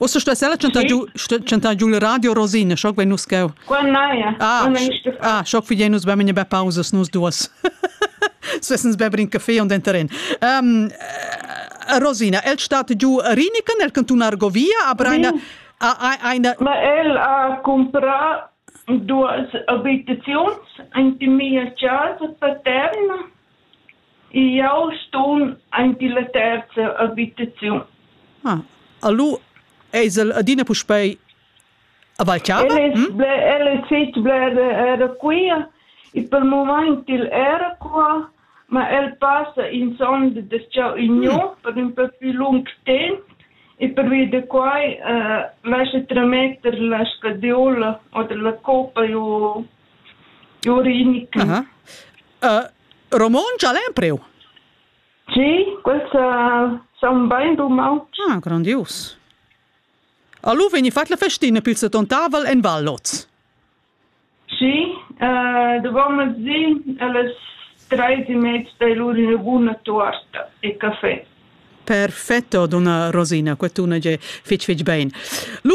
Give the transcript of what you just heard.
Ussa stuess ella chantar giu, chantar giu il radio Rosina, schoc vein nus cheu. Qua naja. Ah, ah schoc fidein nus beim in be pausas nus duas. Svessens beber in caffè und enteren. Um, Rosina, el stat giu Riniken nel cantun Argovia, a Breina. Eine... Ma el ha comprat duas abitaziuns, eine mia casa paterna Jau sun anc la terza abitaziun. Ah, allo eis el adina puspei a Valchava? El es, ble, el es fich bler era quia e pel mumaint el era qua, ma el passa insomma da cha gnü per ün po plü lung temp e pervia da quai uh, lascha trametter la scadiola oder la copa giù giù Riniken. Aha. Uh, romontsch al empriu? Sì, quels uh, son ben dumau. Ah, grandius. Allo veni fat la festina pil setontavel en Valloz. Sì, uh, dovevamo zi alle tre e mezza dai loro una buona torta e caffè. Perfetto, donna Rosina, quest'una che fitch fitch ben. Lu